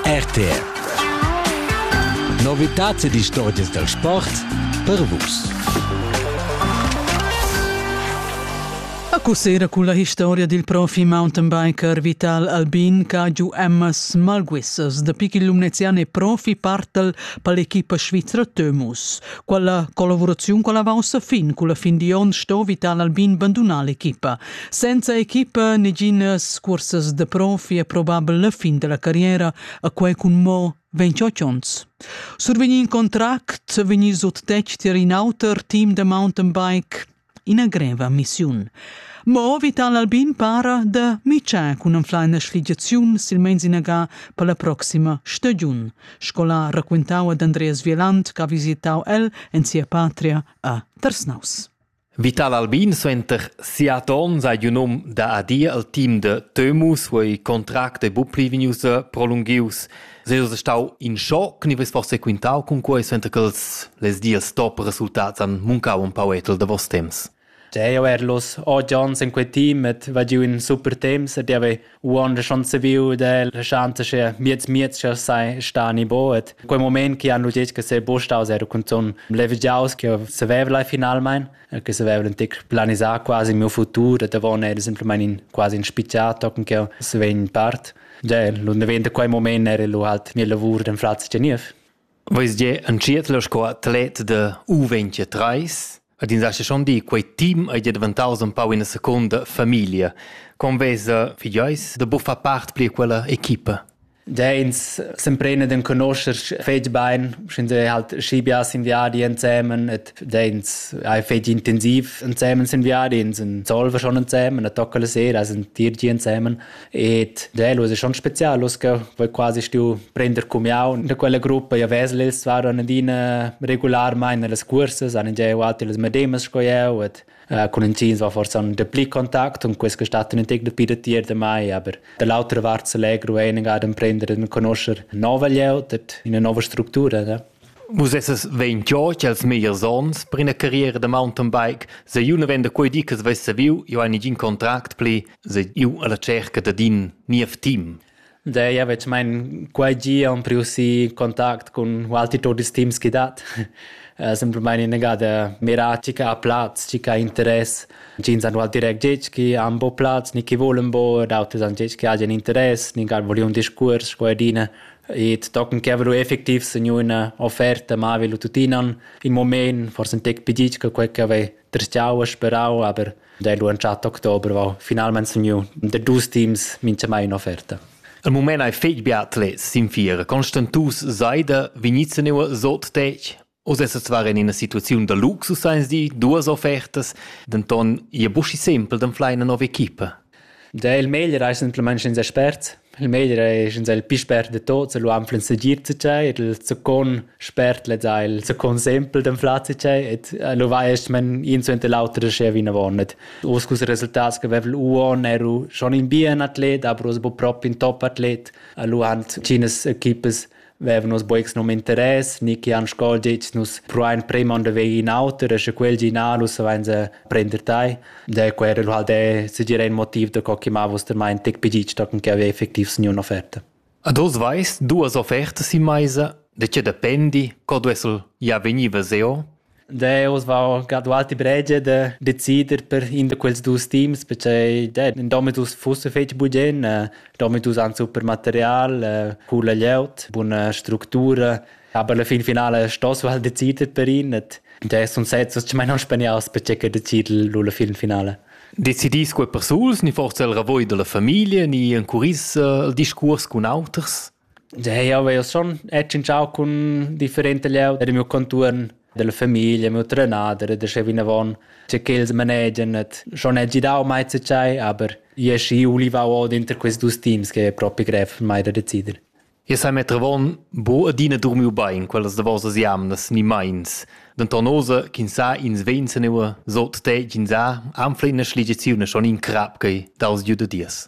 RTR Novitats ed istorgias dal sport per Vus. A Cusera cun la historia dil profi mountainbiker Vital Albin ch'ha giu emmas malguissas da pic il lumnezian e profi partel per l'equipa svizra Tömus. Quella collaboraziun con la vaussa fin, con la fin di on sto Vital Albin bandunar l'equipa, Senza equipa, neginas cursas da profi è probabel la fin della carriera, a quei cun mo 28 onns. Survegnì in contract, vegnì sut tec tier in auter team da mountain bike, ina greva missiun. Mo Vital Albin para da mitschar cun anfleina schligiaziun silmeins inaga per la proxima stagiun, sco la raquintau ad Andreas Vieland, che ha visitau el en sia patria a Tersnaus. Vital Albin suenter siat onns ha giu num da adir al team da Temus, wo ei contract ei buc pli vegnius prolunghius. Seus ei stau in schoc, ni veis forse quintau cun quei, suenter che els les dies top resultats han muncau un pau etel davos temps? Deo erlus, odd onns in quei team et va giu in super temps ed java Uonda schon saviu da lasciante che miez miez che sai sta ni boet. Quei moment che hanno detto che se bostaus era cunzon levigiaus che saveva lai finalmein, che saveva un tic planisar quasi il mio futuro, da von era semplicemente in quasi in spicciato con che se vegn part. Ja, l'un daventa quei moment era lu halt mio lavoro den Fratz Geniev. Veis gie entschiet la sco atlet da U23 ed ins hagi schon di quei team ei gie daventaus empau ina secunda famiglia. Con vesa figlieis da buffar part pli quella equipa? Da ins s'emprena d'enconoscher fetg bein, sch'ins ei halt schi biars in viadi ensemen et da ins ei fetg intensiv ensemen sin viadi, ins en Solver schon ensemen, a tocca la sera sind dir gi ensemen. Et delus è schon specialus che voi quasi stiu prender cumiau da quella gruppa ja vesles var an adina regularmein nelles cursas an gieu alti las medemas sco eu et Uh, con intgins war forse un de pli kontakt und quest gestatten in tec de pide tier de mai aber de lauter wart se legro einig ad prender den conoscer nova lieu dat in eine nova struktura da Vus essas vein giò cha'ls megliers ons per üna carriera da mountainbike, sè eu nu venda quai di ch'els vess savieu, eu hai negin contract pli, sè eu alla tscherca dad ün niev team. Dai, ja vecmain quai di am priu si contact cun altri tuot ils teams chi dat. Simplamaing inagada mirà chi ch'ha plaz, chi ch'ha interess. Ins han val direct ditg chi han bo plaz ni chi volan bo ed auters han ditg chi hajan interess, nin ch'han vogliun discuors cu adina. Ed tochen che haveva lu effectiv segniu ina offerta mava lu tuttina in mument, forse in tec pigitg che quei che haveva tristgiau e sperau, aber da lu entschatt october va finalmein segniu da dus teams mintgamai un'offerta. Il mument ei fetg bia atlets sin fiera. Constantus Seide vegnids neuer sot tec. Oz essas var en ina situaziun da luxus, eins di, duas offertas, denton ia buschi sempel d'anflar ina nova equipa. Da il meglier ei semplamain sch'ins expert. Il meglier ei sch'ins è il pli spert de tots, e lu anflen segir tschei, ed il secon spert lez ha il secon sempel d'anflar tschei, ed lu vai es men in suenter l'auter da schea vinavon. Oz cus resultats che vevel uon eru schon in bien atlet, aber oz bu propi in top atlet, e lu han tschines equipas vevan nus bucs num interess ni che han sco detg nus pruain premond da veir in auter e sche quel gi na nus savein se prender tai de quer el halt de segira in motiv da co che ma vostramain tec pedic da che aveva effectiv sniu un'offerta Ad oz veis duas offertas in meisa de che dependi co duessel ja vegniva seo Deus va ga dualti bregia da decider per in da quels dus teams perché de, in domitus fusse fetg bugen, eh, domitus han super material, eh, coola glieud, buna structura, aber la fin finale stoss halt decider per ihn et de sun sezzas che mai non spaniaus perché che decid lu la fin finale. Decidis quei persuls ni forse el ravoi della famiglia ni en curis eh, il discurs cun auters? Jeu havev schon tschintschau cun differenta glieud era miu contuorn dalla famiglia, miu trenader e dastgei vinavon che quels manegien et schon hagi dau mai zatgei, aber io aschi ulivau odenter quels dus teams che ei propi grev per mai da decider. Jeu sai metter avon buca adina durmiu bein quellas davosas jamnas ni meins. Denton oza ch'ins sa ins vegn senua sot te ch'ins ha anfla ina sligiaziun schon in crap ch'ei daus giu da dies.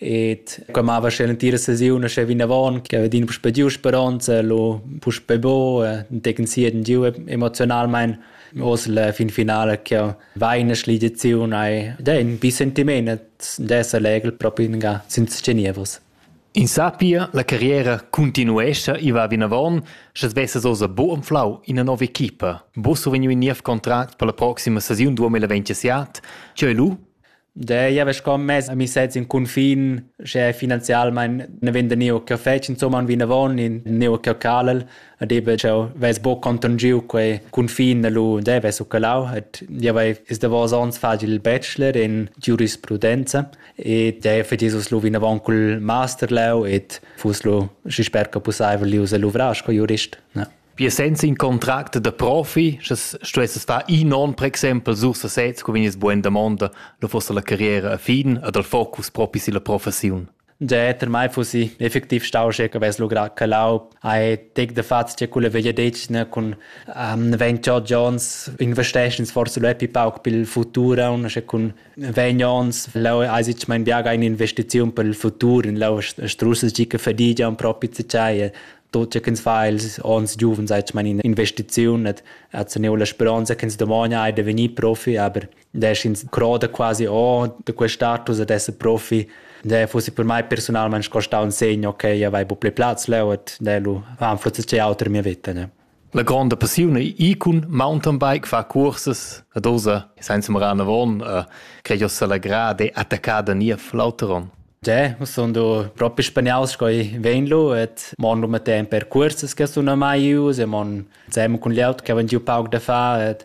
Et qua mava sche l'entira sesiun sche vinavon che aveva puspè giu speranza lo puspè bo e tecen si den giu emozionalmein os la fin finale che va in schligiziun ai da in bi sentiment d'esser legel proprio in ga senza Genevos In sapia, la carriera continuescha i va vinavon, sche svessas osa bo anflau ina nova equipa. Bo survegniu in niev contract per la proxima sesiun 2027, che lu De ja ves com mez a mi sez in cunfin, sche finanzialmein ne venda neu che fetsch insomma un vinavon in neu che calal, ad ebe cheu ves bo conton giu quei cunfin da lu de ves u calau, et ja vai is da vos ons facil il bachelor in giurisprudenza e de fetisus lu vinavon cul master leu et fus lu schi sper che pusseivel lius a luvrar sco jurist. Ja. Pia senza in contract da profi, sche stuesses far in onn, per exempel, sur sesez, co vegnies bugen damonda, lu fosse la carriera a fin ed al focus propi silla professiun. Già per mai fussi effektiv stau sche che avess logrà calau ai tec de fats che quella veglia decina cun um, Ven Cho Jones investeschens forse lo epi pauc pel futur un sche cun Ven Jones lau ai sich mein biaga in investiziun pel futur in lau strusses gica fadigia un propi zicai Tot che ins fa els onns giuvens hai meine Investiziun et hat teniu la speronza che ins domani hai de vegnir profi, aber da ins croda quasi oh de quel status ad essere profi, da fossi per mai personalmente sco stau un segno che io avevo più platz leu et da lu han forse auter mia vita, ne. La gronda passiun ei icon mountainbike fa cursas ad osa senza marar avon e crei jo selagrà de attaccar da nia flauteron. Ja, sun du propi spaniaus sco i vegn lu et mon lu metten per cursas che sun mai ius e mon sem cun glieud che van giu pauc da fa et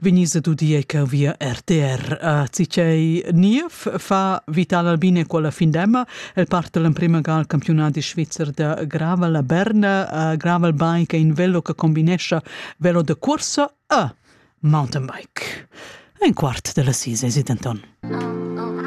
vegnis ad udir che via RTR. Uh, cicei Niev fa Vital Albine quella fin d'emma. El parte l'emprima gara al campionat di svizzer da Gravel a Berna. Uh, Gravel Bike è in velo che combinesce velo de corsa e mountainbike. Ein quart della sise, si denton.